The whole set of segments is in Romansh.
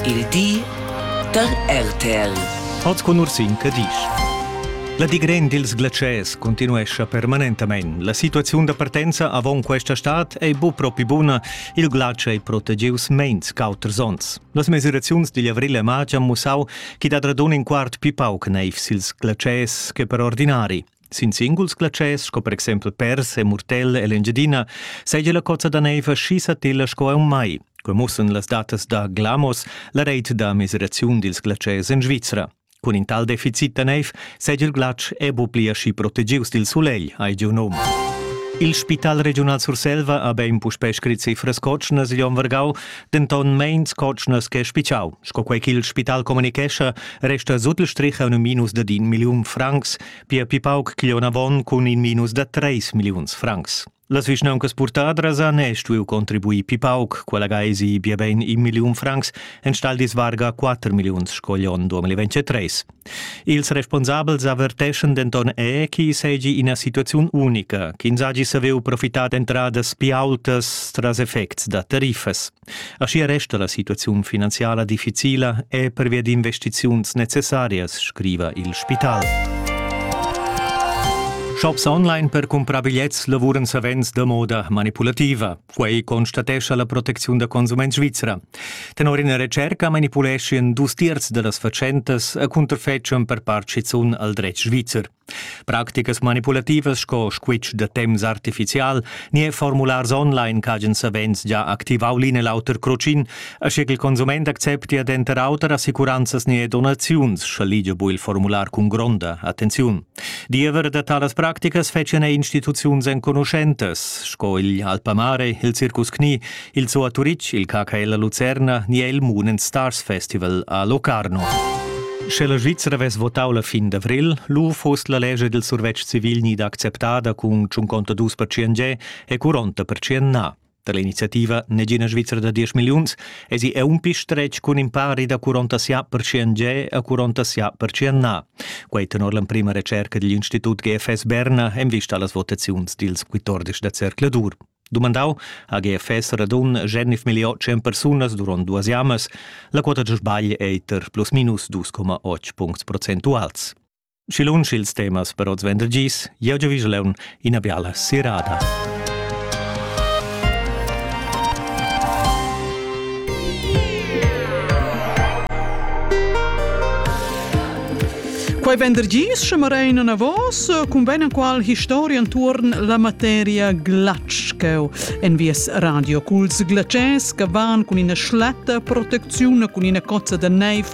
Il di da RTL. Hoz cun Ursin Cadisch. La digren dils glatschers continuescha permanentamein. La situaziun da partenza avon questa stad ei bu propi buna. Il glatsch ei protegius meins qu'auters onns. Las mesiraziuns digl avril e marz han mussau chi dat radun in quart pi pauc neiv sils glatschers che per ordinari. Sin singuls glatschers, sco per exempel pers e murtella e l'Engiadina, seigi la cozza da neiva schi satilla sco aunc mai. Quei mussen las datas da Glamos, la reit da miseraziun dils glatschers en Svizra. Cun in tal deficit da neiv seigi il glatsch e bu pli aschi protegius dil sulegl, hai giu num. Il Spital regiunal Surselva ha bein puspei scrit cifras cotschnas igl onn vargau, denton meins cotschnas che spitschau. Sco quei ch'il spital communichescha, resta sut il strich un minus da din milliun francs, pia pi pauc ch'glion avon cun in minus da treis milliuns francs. Las vischnauncas purtadras han e stuiu contribuir pi pauc, quella gaesi bia bein in milliun francs, enstagl disvarga 4 milliuns sco gl'on 2023. Ils responsabels averteschan denton è che seigi ina situaziun unica, ch'ins hagi saviu profitar d'entradas pli aultas tras effects da tariffas. Aschia resta la situaziun finanziala difficila e pervia d'investiziuns necessarias, scriva il spital. Shops online per cumprar bigliets lavuran savens da moda manipulativa. Quei constatescha la protecziun da consument svizra. Tenor ina retscherca manipuleschien dus tiers dellas fatschentas a cunterfetschan per part schizun al dretg svizzer. Practicas manipulativas sco squitsch da temps artificial ni e formulars online ch'hagen savens già activau l'in e l'auter crocin, asche ch'il consument acceptia denter auter assicuranzas ni donaziuns, scha ligia bu il formular cun gronda attenziun. Diever da talas practicas fetschan er instituziuns enconuschentas, sco il Alpamare, il Circus Knie, il Zoo a Turitg, il KKL a Lucerna ni il Moon and Stars Festival a Locarno. Sche la Svizzera vess votau la fin d'avril, lu fost la lescha dil survetsch civil ni d'acceptada cun 52% e 40% na. Da l'iniziativa Negina Svizra da diesch milliuns esi è un pi stretg cun in pari da 40 percent ge a 40 percent na. Quai tenor l'emprima recerca digl Institut GFS Berna en vista a las votaziuns dils 14 da Zercladur. Dumandau ha GFS radun Genif milliot 100 persunas durant duas jamas, la quota da sbagl è eiter plus minus 2,8 punct procentuals. Schi lunsch ils temas per oz vendergis, jeu giavisch leun ina biala sirada. Quei vendergis che marein a vos cun ben qual historia entuorn la materia glatscheu en vies radio culs glaces che van cun ina schlatta protecziun cun ina cozza da neiv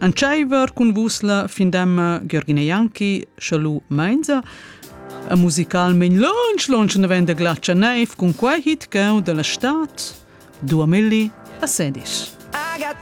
Entscheiver cun vus la findemma Gergine Janki, Chalu Mainza, e musicalmein lunch lunch novenda glatscha neiv cun quei hit cheu dalla stad 2000 a Sedis.